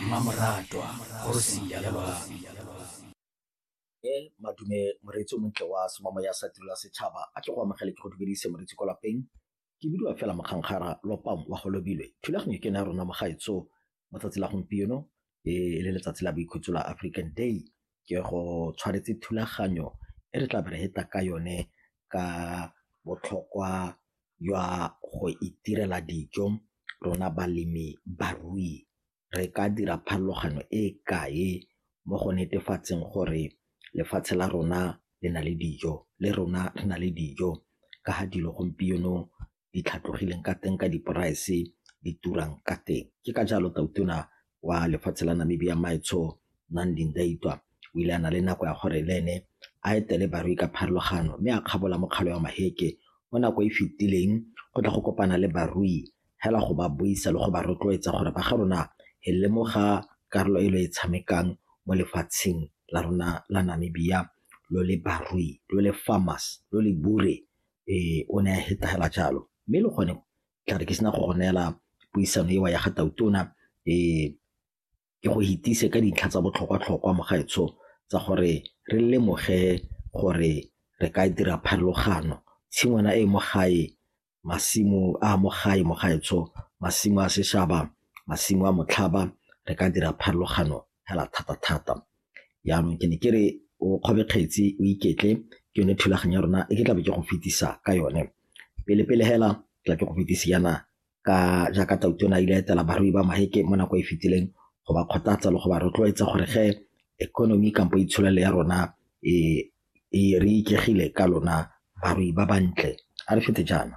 mmamoratwa kgosi ya lebaka e madume moreetsi o montle wa semamo ya sa tirela setšhaba a tle go amogele ke go dumedise moreetsi kwa lapeng ke bidiwa fela mokgankgara lopang wa go lobilwe thulaganyo ke na rona mogaetso mo tsatsi la gompieno e le letsatsi la boikhutso la african day ke go tshwanetse thulaganyo e re tla be re feta ka yone ka botlhokwa jwa go itirela dijo rona balemi barui re ka dira pharologano e kae mo go netefatseng gore lefatshe la rona le na le dijo le rona re na le dijo ka ga dilo gompieno di tlhatlogileng ka teng ka di-price di turang ka teng. Ke ka jalo tautona wa lefatshe la Namibia Maetsho Nandi Ndaitwah o ile a na le nako ya gore le ene a etele barui ka pharologano mme a kgabola mokgalo wa maheke mo nako e fetileng go tla go kopana le barui hela go ba buisa le go ba rotloetsa gore ba ga rona e lemoga karolo e lo e tshamekang mo lefatsheng la rona la Namibia lo le barui lo le farmers lo le bure Ee, o ne a hetela jalo. Mme le gone tla re ke sena go go neela puisano eo ya ga Tautona ke go hetise ka dintlha tsa botlhokwa-tlhokwa mo gaetsho tsa gore re lemoge gore re ka dira pharologano. Tshingwana e mo gae, masimo a mo gae mo gaetsho, masimo a seshaba, masimo a motlhaba, re ka dira pharologano hela thata-thata. Jaanong ke ne ke re o kgobe kgetsi o iketle ke yone thulaganyo ya rona e ke tlabe ke go fetisa ka yone. Pele-pele hela tla ke go fetisi yana ka jaaka Tautona ile etela barui ba Maheke mo nako e fetileng go ba kgothatsa le go ba rotloetsa gore ge economy kampo itsholelo ya rona e re ikegile ka lona barui ba bantle a re fete jaana.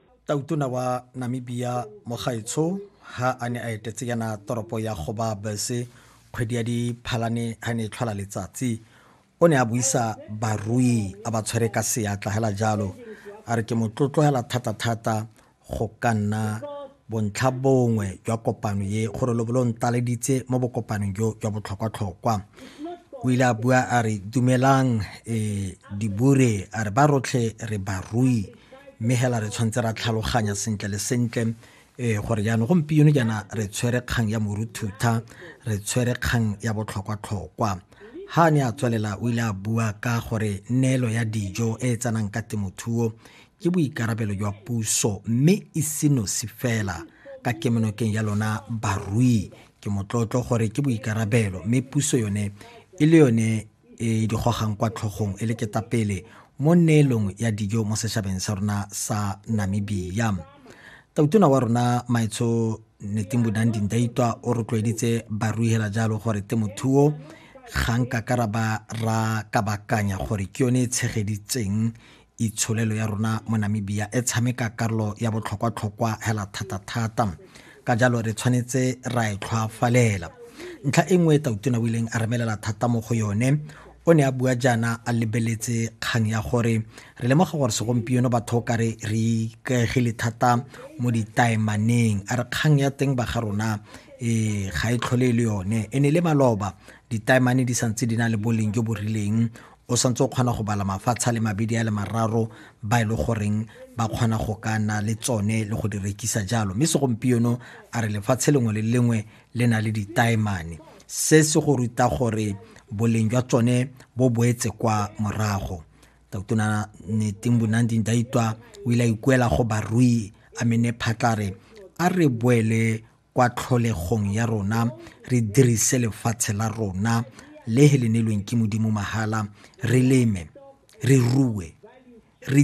tautona wa namibia mogaetsho ha a ne a etetse yana toropo ya goba bese kgwedi ya diphalane ha ne e tlhola letsatsi o ne a buisa barui a ba tshwere ka seatla hela jalo a re ke motlotlogela thata-thata go ka nna bontlha bongwe jwa kopano ye gore lobo lo ntaleditse mo bokopanong jo jwa botlhokwa-tlhokwa o ile a bua a re dumelang um dibure a re ba rotlhe re barui mme hela re tshwanetse ra tlhaloganya sentle le sentle ee gore jaanong gompieno jaana re tshwere kgang ya moruthutha re tshwere kgang ya botlhokwa-tlhokwa ha ne a tswelela o ile a bua ka gore neelo ya dijo e e tsenang ka temothuo ke boikarabelo jwa puso mme e senosi fela ka kemonokeng ya lona barui ke motlotlo gore ke boikarabelo mme puso yone e le yone e di gogang kwa tlhogong e le ketapele mo neelong ya dijo mo setšhabeng sa rona sa namibia tautona wa rona maetsho netimbudang dindaitwa o rotloeditse baruihela jalo gore temothuo ga nka karaba ra kabakanya gore ke yone e tshegeditseng itsholelo ya rona mo Namibia e tshameka karolo ya botlhokwa-tlhokwa hela thata-thata ka jalo re tshwanetse ra e tlhwafalela ntlha e nngwe e tautona o ileng a remelela thata mo go yone o ne a bua jaana a lebeletse kgang ya gore re lemoga gore segompieno batho ka re re ikaegile thata mo ditaemaneng a re kgang ya teng ba ga rona e ga e tlhole e le yone e ne le maloba ditaemane di santse di na le boleng jo bo rileng o santse o kgona go bala mafatshe a le mabedi a le mararo ba e le goreng ba kgona go ka na le tsone le go di rekisa jalo mme segompieno a re lefatshe lengwe le lengwe le na le ditaemane se se go ruta gore boleng jwa tsone bo boetse kwa morago totona neting bonanding daitwa o ile a ikuela go barui a mene phatlare a re boele kwa tlholegong ya rona re dirise lefatshe la rona le he le neelweng ke modimo mahala re leme re rue re